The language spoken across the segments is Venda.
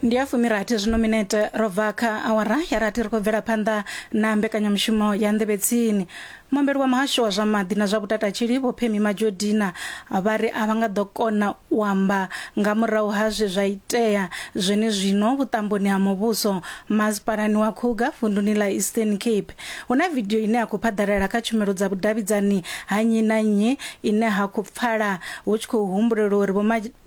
ndi ya fumirathi zwino minete ro bva kha awara ya rathi ri khou bvela phanḓa na mbekanyamushumo ya nḓevhetsini muambeli wa muhasho wa zwa maḓi na zwa vhutatatshili vho phemi majodina vha ri a vha nga ḓo kona u amba nga murahu ha zwe zwa itea zwenezwino vhuṱamboni ha muvhuso masipalani wa khuga vunduni ḽa eastern cape hu na vidio ine ya khou phaḓalala kha tshumelo dza vhudavhidzani ha nnyi na nnyi ine ha khou pfala hu tshi khou humbulelwa uri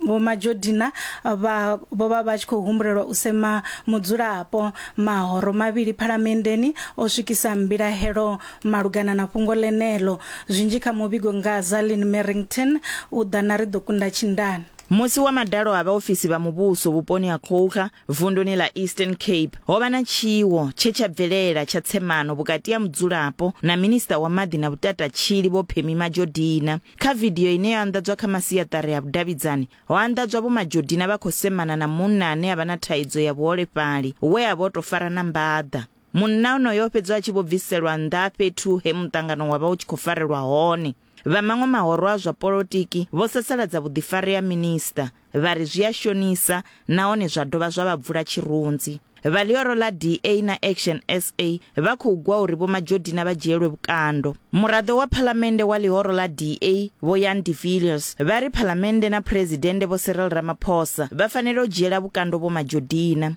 Vho Majodina vha vho vha vha tshi khou humbulelwa u sema mudzulapo mahoro mavhili phalamenndeni o swikisa mbilahelo malugana na fhungo ḽeneḽo. Zwinzhi kha muvhigo nga Zalin Merrington u ḓa na ri ḓo kunda tshindani. Musi wa madalo ha vhaofisi vha muvhuso vhuponi ha Coega, Vunduni ḽa Eastern Cape, ho vha na tshiwo tshe tsha bvelela tsha tsemano vhukati ha mudzulapo na Minisiṱa wa Maḓi na Vhutatatshili Vho Phemi Majodina. Kha vidio ine yo anḓadzwa kha masiaṱari a vhudavhidzani, ho anḓadzwa Vho Majodina vha khou semana na munna ane a vha na thaidzo ya vhuholefhali we a vha o tou farana mbaḓa. Munna onoyo o fhedzwa a tshi vho bviselwa nnḓa fhethu he muṱangano wa vha u tshi khou farelwa hone. Vha maṅwe mahoro a zwa polotiki vho sasaladza vhuḓifari ha minisiṱa vha ri zwi a shonisa nahone zwa dovha zwa vha bvula tshirunzi. Vha ḽihoro ḽa DA na Action sa vha khou gwa uri Vho Majodina vha dzhielwe vhukando. Muraḓo wa Phalamennde wa ḽihoro ḽa DA, Vho Jan de Villiers, vha ri Phalamennde na Phresidennde Vho Cyril Ramaphosa vha fanela u dzhiela vhukando Vho Majodina.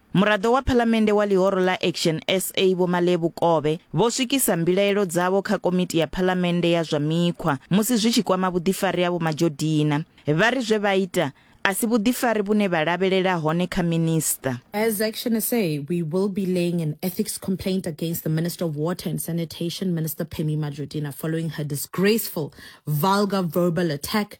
Muraḓo wa Phalamennde wa ḽihoro ḽa Action sa Vho Malebu Kobe vho swikisa mbilaelo dzavho kha komiti ya Phalamennde ya zwa mikhwa musi zwi tshi kwama vhuḓifari ha Vho Majodina. Vha ri zwe vha ita a si vhuḓifari vhune vha lavhelela hone kha Minisiṱa. As Action sa, we will be laying an ethics complaint against the Minister of Water and Sanitation, Minister Phemi Majodina, following her disgraceful, vulgar verbal attack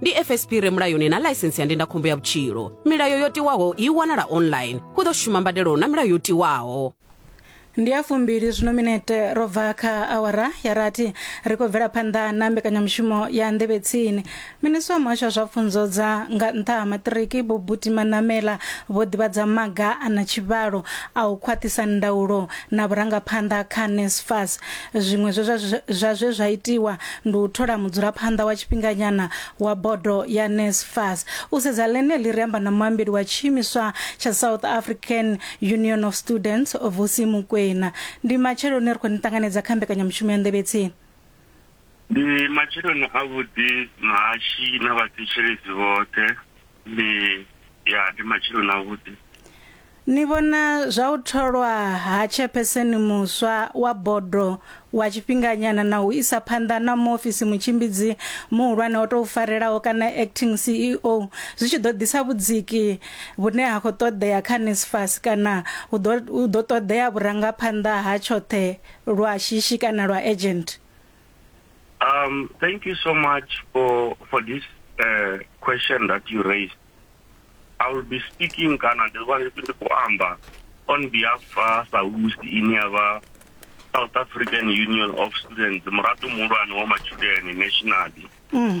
ndi fsp re mulayoni na ḽaisensi ya ndindakhombo ya vhutshilo milayo yo tiwaho i wanala online hu ḓo shuma mbadelo na milayo yo tiwaho ndi ya fumbili zwino minete ro bva kha awara ya rathi ri khou bvela phanḓa na mbekanyamushumo ya nḓevhe tsini minisiwa muhasho wa zwa pfunzo dza nga nṱha ha maṱiriki vho buti manamela vho ḓivhadza maga a na tshivhalo a u khwaṱhisa ndaulo na vhurangaphanḓa kha nesfas zwiṅwe zwe zwa- zwa zwe zwa itiwa ndi u thola mudzulaphanḓa wa tshifhinganyana wa bodo ya NSFAS. U sedza ḽeneḽi ri amba na muambeli wa tshiimiswa tsha South African Union of Students, Vusi Mukwena. Ndi matsheloni ri khou ni ṱanganedza kha mbekanyamushumo ya Nḓevhe Tsini. Ndi matsheloni a vhuḓi mahashi na vhathetshelesi vhoṱhe. Ndi ya ndi matsheloni a vhuḓi. Ni vhona zwa u tholwa ha tshepheseni muswa wa bodo wa tshifhinganyana na u isa phanḓa na muofisi mutshimbidzi muhulwane o tou farelaho kana acting CEO zwi tshi ḓo ḓisa vhudziki vhune ha khou ṱoḓea kha NSFAS kana hu ḓo hu ḓo ṱoḓea vhurangaphanḓa ha tshoṱhe lwa shishi kana lwa urgent? Um, thank you so much for for this uh, question that you raised. I will be speaking kana ndi vha ndi khou amba on behalf of SAUST ine ya vha South African Union of Students muraḓo muhulwane wa matshudeni nationally mm.